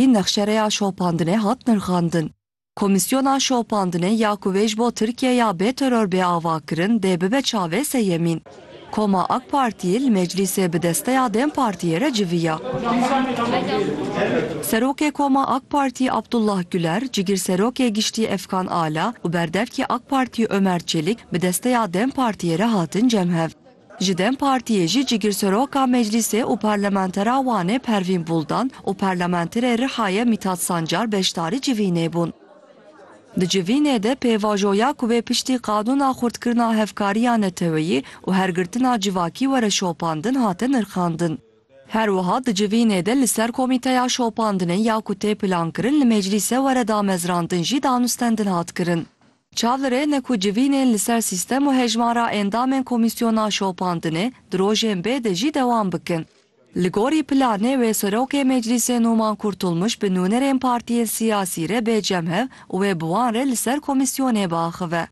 jî nexşereya şopandinê hat nirxandin. Komîsyona şopandinê ya ku vê ji bo Tirkiyeya bê teror bê avakirin dê bibe çavê seyemîn. Koma AK Partiyê li meclîsê bi desteya dem Partiyê re civiya. Serokê Koma AK Partiyê Abdullah Guler, Cigirserokê Giştî Efkan Ala û berdevkî AK Partiyê Ömer Çelik bi desteya dem Partiyê re hatin cemhev. Ji dem Partiyê jî Cigirseroka Meclîsê û Parlamentera Wanê Pervîn Buldan û Parlamenterê Rihayê Mîtat Sancar beşdarî civînê bûn. Di civînê de pêvajoya ku bê piştî qanûna xurtkirina hevkariya neteweyî û hergirtina civakî were şopandin hate nirxandin. Her wiha di civînê de li ser komîteya şopandinê ya ku tê plankirin li Meclîse were damezrandin jî danûstendin hat kirin. Çavlirê ne ku civînên li ser sîstem û hejmara endamên komîsyona şopandinê di rojên bê de jî dewam bikin. Li gorî planê wê Serokê Meclîsê Numan Kurtulmuş bi nûnerên partiyên siyasî re bê cemhev û wê bi wan re li ser komîsyonê biaxive.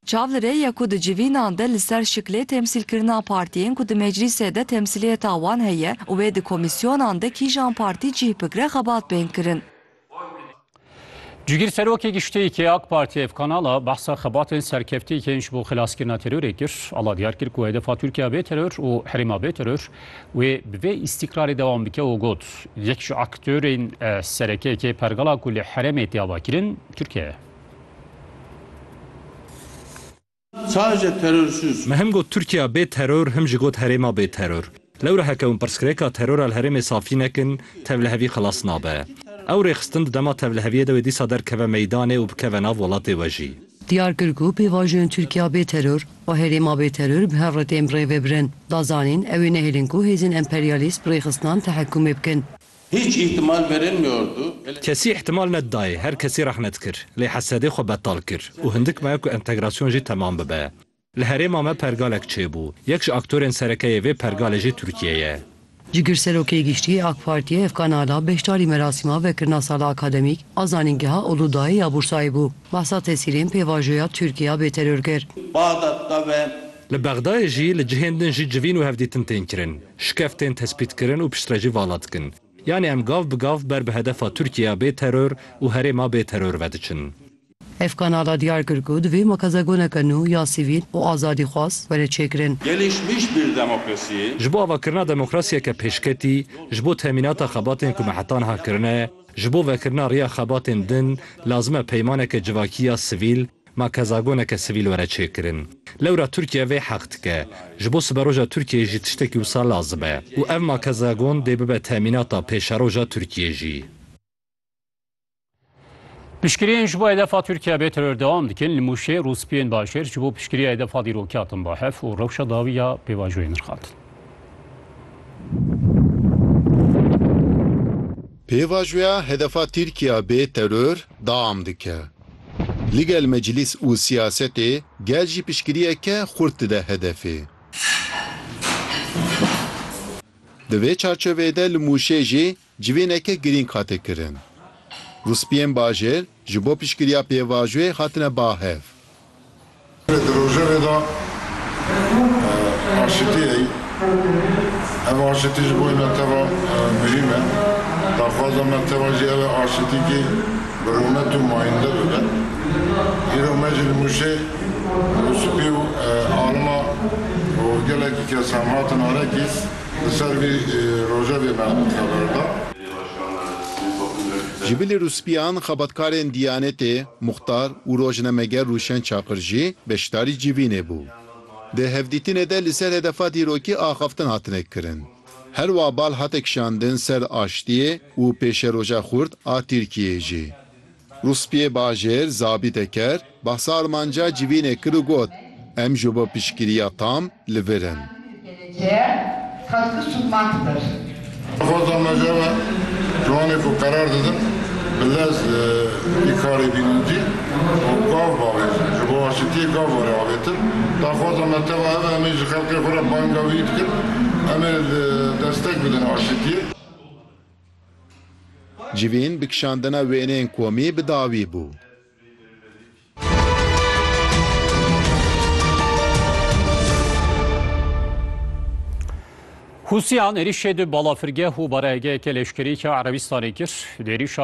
Çavlirê ye ku di civînan de li ser şiklê temsîlkirina partiyên ku di meclîsê de temsîliyeta wan heye û wê di komîsyonan de kîjan partî cîh bigre xebat bên kirin. Cîgîr Serokê Giştî yê AK Partiyê ev kanala behsa xebatên serkeftî yên ji bo xilaskirina terorê kir. Ala diyar kir ku hedefa Tirkiya bê teror û herêma bê teror wê bi vê îstîkrarê dewam bike û got, Yek ji aktorên serekek ê pergala ku li herêmê tê avakirin Tirkiye ye. Saje teror sus. Me him got Tirkiya bê teror him jî got herêma bê teror. Lewre heke hûn pirsgirêka terora li herêmê safî nekin, tevlihevî xilas nabe. Ew rêxistin di dema tevliheviyê de wê dîsa derkeve meydanê û bikeve nav welatê we jî. Diyar kir ku pêvajoyên Tirkiya bê teror û herêma bê teror bi her rikê em rê vebirin. Da zanîn, ew ê nehêlin ku hêzên emperyalîst bi rêxistinan tehekûmê bikin. Hiç îhtimal verilmiyordu. Kesî îhtimal nedidayê, her kesî rehmet kir. Lê hesedê xwe betal kir û hindik maye ku entegrasyon jî temam bibe. Li herêma me pergalek çêbû. Yek ji aktorên sereke yê vê pergalê jî Tirkiye ye. Cigirserokê Giştî yê AK Partiyê Efkan Ala beşdarî merasîma vekirina sala akademîk a Zanîngeha Uludayê ya Bursayê bû. Behsa tesîrên pêvajoya Tirkiya bê teror kir. Baxdat de ve. Li Bexdayê jî li cihên din jî civîn û hevdîtin tên kirin. Şikef tên tespîtkirin û piştre jî vala dikin. Yanî em gav bi gav ber bi hedefa Tirkîya bê teror û herêma bê teror vediçin. Ev kanala diyar kir ku divê makazegoneke nû ya sivîl û azadîxwaz were çêkirin. Gelişmiş bir demokrasiyê. Ji bo avakirina demokrasiyeke pêşketî, ji bo temînata xebatên ku me heta niha kirine, ji bo vekirina riya xebatên din lazim e peymaneke civakî ya sivîl, Ma kezagoneke sivîl were çêkirin. Lewra Tirkiye vê heq dike. Ji bo siberoja Tirkiyeyê jî tiştekî wisa lazim e. Û ev ma kezagon dê bibe temînata pêşeroja Tirkiyê jî. Piştgiriyên ji bo hedefa Tirkiye bê teror dewam dikin. Li Mûşê rûspiyên bajêr ji bo piştgiriya hedefa dîrokî hatin ba hev û rewşa dawî ya pêvajoyê nirxandin. Pêvajoya hedefa Tirkiye bê teror dewam dike. Ligel meclîs û siyasetê gel jî piştgiriyeke xurt dide hedefê. Di vê çarçoveyê de li Mûşê jî civîneke girîng hate kirin. Rûspiyên bajêr ji bo piştgiriya pêvajoyê hatine ba hev. Di rojevê de aşitî heye. Ev aşitî ji bo me teva muhîm e. Daxwaza me teva jî ew e aşitîkî bi rûmet û mayînde bibe. Îro me ji nimûşê û spî û alima û gelekî kes hem hatin arekî li ser vî rojevê me xeber da. Ji bilî rûspîyan xebatkarên Dîyanetê, Muxtar û rojnameger Rûşen Çakır jî beşdarî civînê bû. Di hevdîtinê de li ser hedefa dîrokî axaftin hatine kirin. Her wa bal hate kişandin ser aştiyê û pêşeroja xurt a Tirkiyeyê jî. Rûspiyê Bajêr, Zabî Teker, behsa armanca civînê kir û got, Em ji bo piştgiriya tam li vir in. Xwest dana ji hev e ji wanê ku qerar didin bi lez vî karê bînin cî û gav bavêjin ji bo aşitiyê gav were avêtin. Daxwaza me teva ev e em ê ji xelkê xwe re banga wî bikin em ê li destek bidin aşitiyê. Civîn bi kişandina wêneyên komî bi dawî bû. Hûsiyan êrîşê di balafirgeh û barehgeheke leşkerî ke Erebîstanê kir. Di êrîşa